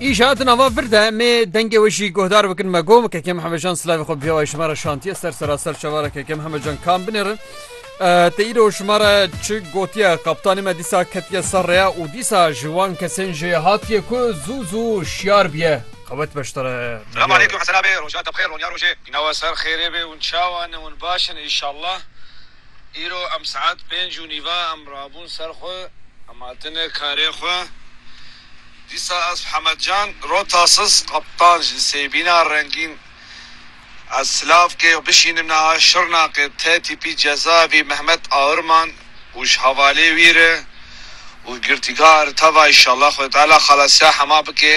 Îşa di nava vir de mê dengê wê jî guhdar bikin me gom kekem hemecan silavê xwe biyawayê ji me re şantiye ser seraser çavara kekem hemecan kam binêrin. Te îro ji me re çi gotiye kaptanê me dîsa ketiye ser rêya û dîsa ji wan kesên jê hatiye ku zû zû şiyar biye qewet beştere. Selam aleykum Hesen abi roja te bixêr ronya rojê. Nawe ser xêrê bê hûn çawa ne hûn baş in inşallah. Îro em saet pênc û nîva em rabûn ser xwe, em hatine karê xwe. Dîsa ez Hemed Can Rotasis Kaptan ji Sêbîna Rengîn ez Silavkê bişînim niha Şirnaqê te tîpî cezavî Mehmet Aurman û ji hevalê wî re û girtîgah re teva îşallah Xwedayê Teala xelasiya hema bike.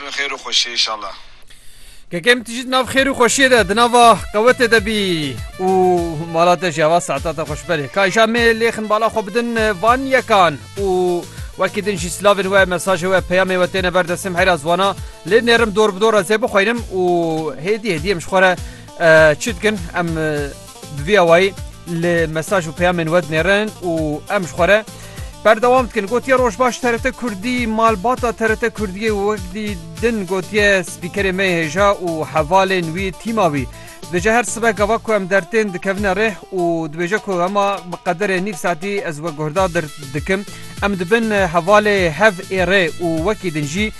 Bi xêr û xweşiyê inşallah. Kekê min tu jî di nav xêr û xweşiyê de di nava qewetê de bî û mala te jî hava saeta te xweş berê. Ka îşa mê lêxin bala xwe bidin van yekan û wekî din jî silavên we mesajê we peyamê we têne ber destê min heyra ziwana lê nêrim dor bi dor ez ê bixwînim û hêdî hêdî em ji xwe re çi dikin em Bi vî awayî li mesaj û peyamên we dinêrin û em ji xwe re berdewam dikin. Gotiye Rojbaş TRT Kurdî malbata TRT Kurdiyê û wekdî din gotiye spîkerê me hêja û hevalên wî tîma wî. Dije her sibe gava ku em dertên dikevine rêh û dibêje ku hema bi qederê nîv saetî ez we guhda dir dikim. Em dibin hevalê hev ê rê û wekî din jî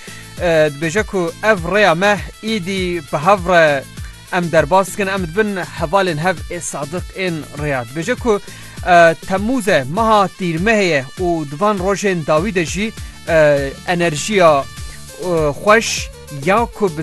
dibêje ku ev rêya me îdî bi hev re Em derbas dikin em dibin hevalên hev ê sadiq ên rêya. Dibêje ku Temmûz e, meha tîrmehê ye û di van rojên dawî de jî enerjiya xweş ya ku bi